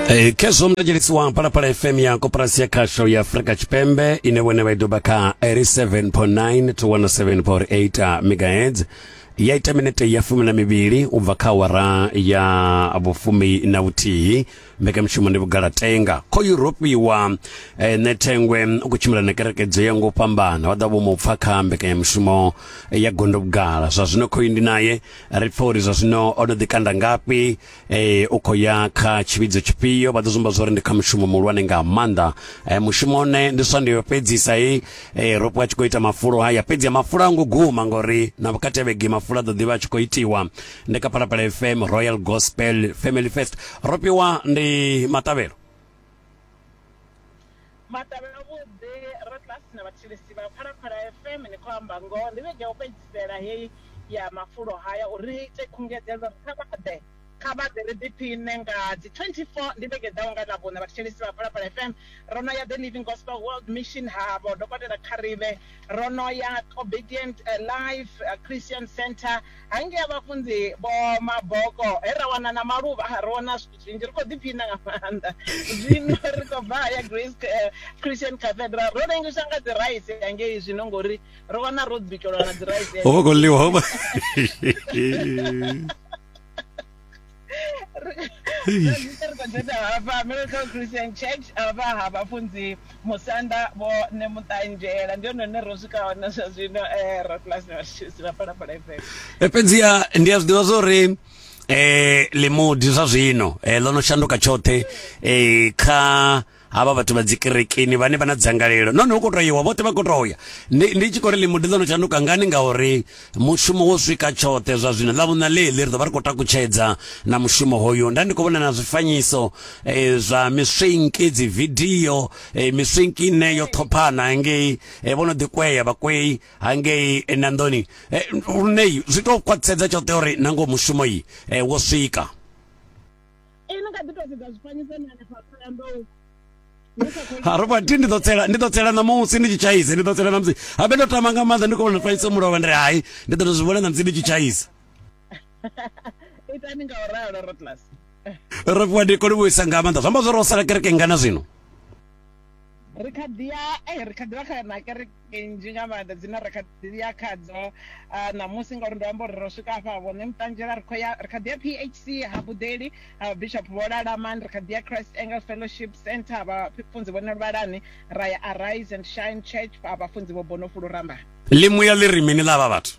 E, kesho mtajelisi wa Palapala FM ya Koperasi ya Kasho ya Afrika Chipembe inewene baidoba ka 87.9 to 107.8 megahertz yaita minete ya fumi na mivhili u bva kha awara ya vhufumi na vhuthihi mbekanyamushumo ndi vhugalatenga kho yuropiwa eh, nethengwe u khou tshimbila na kerekedzo ya ngo fhambana wa ḓa vho mu pfa kha mbekanyamushumo eh, ya gondo vhugala zwa zwino khoyu ndi naye ri pfa uri zwa zwino o no ḓikanda ngafhi eh u khou ya kha tshivhidzo tshifhio vha ḓo zwi amba zwori ndi kha mushumo muhulwane nga maanḓa eh mushumo one ndi swa ndiyo fhedzisa he eh ropo a tshi khou ita mafulo haya fhedzi mafulo a ngo guma ngori na vhukati vhege mafulo a ḓo ḓivha a tshi khou itiwa ndi kha phalaphala fm royal gospel family fest ropiwa ndi maṱavhelo Maṱari avhuḓi, Ratlasi na vhathetshelesi vha Phalaphala FM, ni khou amba ngoho. Ndi vhege ya u fhedzisela heyi ya mafulo haya uri ri ite khungedzelo uri kha vha ḓe, kha vha ḓe ri ḓiphiṋe nga dzi 24. Ndi vhege i ḓaho nga Ḽavhuṋa vhathetshelesi vha Phalaphala FM ro no ya The Living Gospel World Mission ha Vho Dokotela Kgarebe, ro no ya Obedient Life Christian Centre hangei ha Vhafunzi Vho Maboko he ra wana na maluvha, ro wana. zwinzhi ri khou ḓiphina nga maanḓa zwino ri khou bva haya grace eh, christian cathedral ro rengiswa nga dzi rice yangei zwino ngori ro wana ro bikelwa na dzi rice ho vha khou ḽiwa ho vha dzhena hafha miracle christian church hafha ha vhafunzi musanda vho ne muṱanzhela ndi hone hune ro swika hone zwa zwino um eh, raplasi na vhathusi vha phalaphala fm eh, fhedziha ndi a zwi ḓivha zwa uri eh limudi zwa zwino eh ḽo no shanduka tshoṱhe eh kha havha vhathu vha dzikerekeni vhane vha na dzangalelo nahone hu koto iwa vhoṱhe vha koto ya ndi tshi kho ri limudi ḽo no tshanduka ngani ngauri mushumo wo swika tshoṱhe zwa zwino ḽa vhuna ḽeḽi ri ḓo vha ri khou takutshedza na mushumo hoyu nda ndi khou vhona na zwifanyiso eh, zwa miswinki dzividio eh, miswinki ine yo ṱhophana ngei eh, vho no ḓikwea vhakwei hangei eh, nanḓoni eh, lunei zwi tou khwaṱhisedza tshoṱhe uri nango mushumo yi eh, wo swika ene nga ḓi tou sedza zwifanyiso ni hanefha tholanḓou haroba ti ndi ḓo tsela ndi ḓo tsela ṋamusi ndi tshi tshaisa ndi ḓo tsela ṋamusi habe ndo tama nga maanḓa ndi khou vhona fanyisa mulovha ndi ri hai ndi ḓo to zwi vhona ṋamusi ndi tshi tshaisa itani nga u ralo rotlas ro fhiwa ndi kone vhuisa nga maanḓa zwi amba zwo ro sala kereke ngana zwino ri kha ḓi ya eh, ri kha ḓi vha kha na kereke nzhi nga maanḓa dzine ri kha ḓi ya khadzo ah, ṋamusi ngauri ndo amba uri ro swika afha vhone muṱanzhela ri khou ya ri kha ḓi ya phc ha buḓeli ha bishop vho lalamani ri kha ḓi ya christ angle fellowship center vha funzi vhone luvhalani ra ya arise and shine church vha funzi vho bonofulu rambani ḽimuya ḽi ri mini ḽa vha vhathu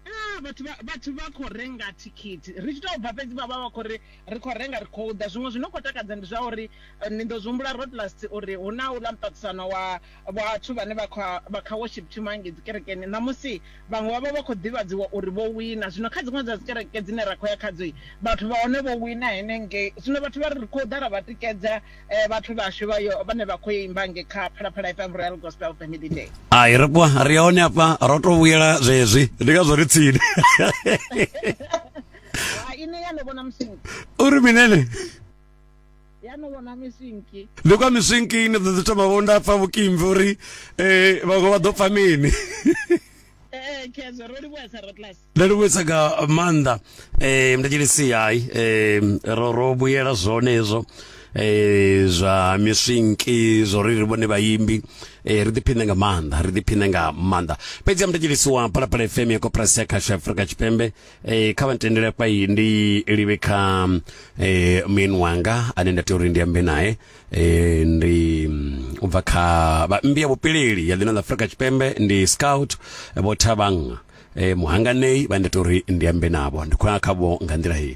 Ah, vhathu vha vhathu vha khou renga thikhithi ri tshi tou bva fhedzi vha vha vha khou ri ri khou renga ri khou ḓa zwiṅwe zwino khou takadza ndi zwa uri eh, ni ḓo zwi humbula rotlast uri hu na uḽa muṱaṱisano wa vhathu vhane vha kha vha kha worship team hangei dzi kerekeni ṋamusi vhaṅwe vha vha vha khou ḓivhadziwa uri vho wina zwino kha dziṅwe dza dzi kereke dzine ra khou ya khadzo vhathu vha hone vho wina henengei zwino vhathu vha ri ri khou ḓa ra vha tikedza vhathu vhashu vha yo vhane vha khou imba nge kha phalaphala FM Royal Gospel Family Day ai ri kwa ri hone hafha ro to vhuyela zwezwi ndi ngazwo ri tsini ine ya no vhona musinki uri minene ya no vhona misinki ndi kwa misinki ine ḓo ḓi thoma vho nda pfa vhukimvi uri um vhaṅwe vha ḓo pfa mini ee kezo ro livhuesa ro class nda livhuwisa nga maanḓa um mndetshilisi hai um ro ro vhuyela zwone hezwo eh zwa miswinki zwo ri ri vhone vhaimbi eh ri ḓiphine nga maanḓa ri ḓiphine nga maanḓa fhedzi ya muthetshelisi wa phalaphala fm ya koporasi ya khasho afurika tshipembe eh kha vha ntendele fha iyi ndi livhe kha eh muyeni wanga ane nda tea uri ndi ambe naye eh ndi mm, u bva kha vhaimbi ya vhupileli ya ḽino ḽa afurika tshipembe ndi scout vho thavhanga eh, muhanganei vha ndita uri ndi ambe navho ndi khou ya khavho nga nḓila heyi